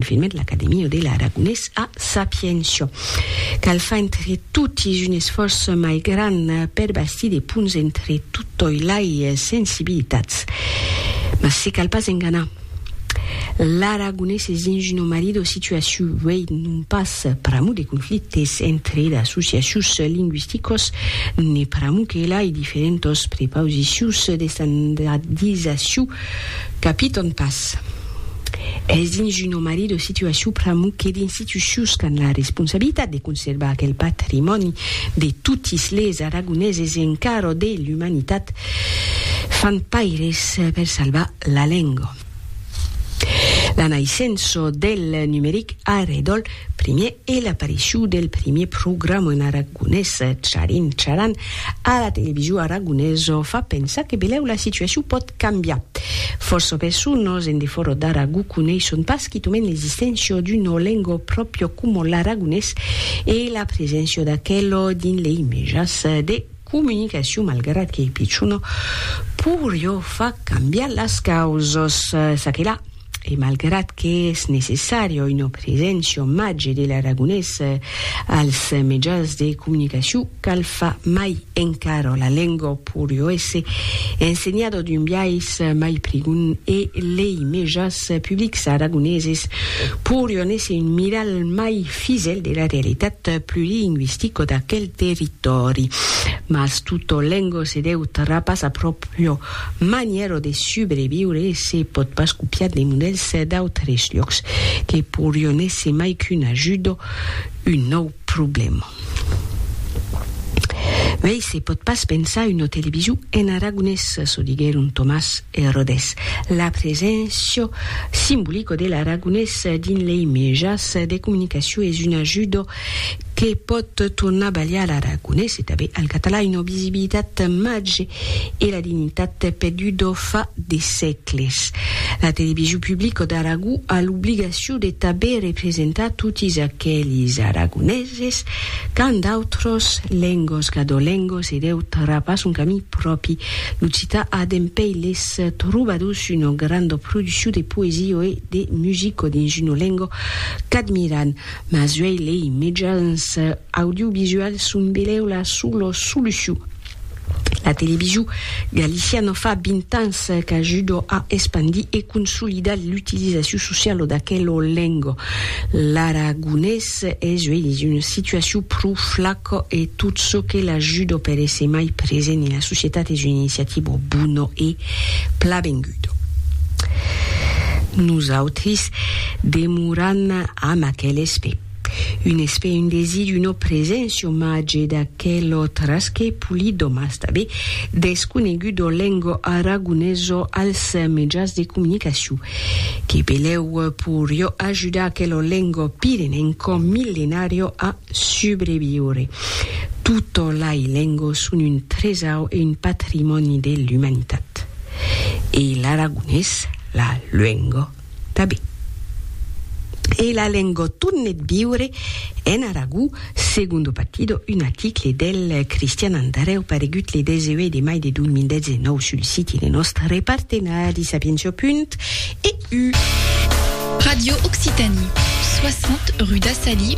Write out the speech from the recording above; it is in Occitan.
Filmet l'Academia de l'Aragonés a Sapientia. Cal far entre totis un esfòrç mai grand per bastir de ponts entre totòi lai sensibilitats. Mas se cal pas enganar. L'aragonés es dins una marido situaciu uei, non pas pr'amor de conflictes entre d'associacius lingüisticos, ne pr'amor que lai diferentos prepausicius d'estandadizaciu capiton pas. Es dins un omari de situacion pr'amor que d'institucions qu'an la responsabilitat de conservar aquel patrimòni de totis les aragoneses e encara de l'umanitat fan paires per salvar la lenga. La naissença del numeric a redòl primièr e l'aparicion del primièr programa en aragonés, Charin Charan, A la television aragonesa fa pensar que belèu la situacion pòt cambiar. Fòrça personas en defòra d'Aragó coneisson pas quitament l'existéncia d'una lenga pròpia coma l'aragonés e la preséncia d'aquela dins lei mejas de comunicacion malgrat qu'ei pichona, poiriá far cambiar las causas. Çaquelà. e malgrat que es necessària una preséncia màger de l'aragonés als mejans de comunicacion, cal far mai encara la lenga pòri èsser ensenhada d'un biais mai prigon e lei mejans publics aragoneses pòrion èsser un miralh mai fisèl de la realitat plurilingüistica d'aquel territòri. Mas tota lenga se deu trapassar pròpria manièra de subreviure e se pòt pas copiar de modèls d'autres lhòcs que pourrion èsser mai qu'un ajut o un nòu problèma. Mei se pòt pas pensar una television en aragonés, çò diguèron Tomàs e Rodés. La preséncia simbolica de l'aragonés dins lei mejans de comunicacion es un ajut que pòt tornar balhar l'aragonés e tanben al catalan una visibilitat màger e la dignitat perduda fa de sègles. La television publica d'Aragó a l'obligacion de tanben representar totis aqueles aragoneses qu'an d'autras lengas cadolengas e deu trapar son camin pròpi. L'occitan a dempèi les trobadors una granda produccion de poesia e de musica dins una lenga qu'admiran. Mas uèi lei mejans audiovisuals son belèu la sola solucion. La televisiu galiciana fa 20 ans qu'ajuda a espandir e consolidar l'utilizaciu sociala d'aquela lenga. L'aragonés es uèi dins una situaciu pro flaca e tot çò que l'ajuda per èsser mai present en la societat es una iniciativa bona e plavenguda. Nosautris Demoram amb aquel espè. Un espè, un desid, una preséncia omage d'aquel autres que Polidòm astabe desconegut au lengo aragoneso als mejans de comunicacion. Que belèu porió ajudar aquel lengo pirenenco millenario a subreviure. Tota lai lengo son un tresau e un patrimòni de l'umanitat. E l'aragonés, la luengo. Tabé. E la lengua tornet viure en Aragó, segundo partido, un article del Cristian Andareu paregut le 18 de mai de 2019 sul siti de nòstre partenari Sapientia.eu. Radio Occitanie, 60 rue d'Assali,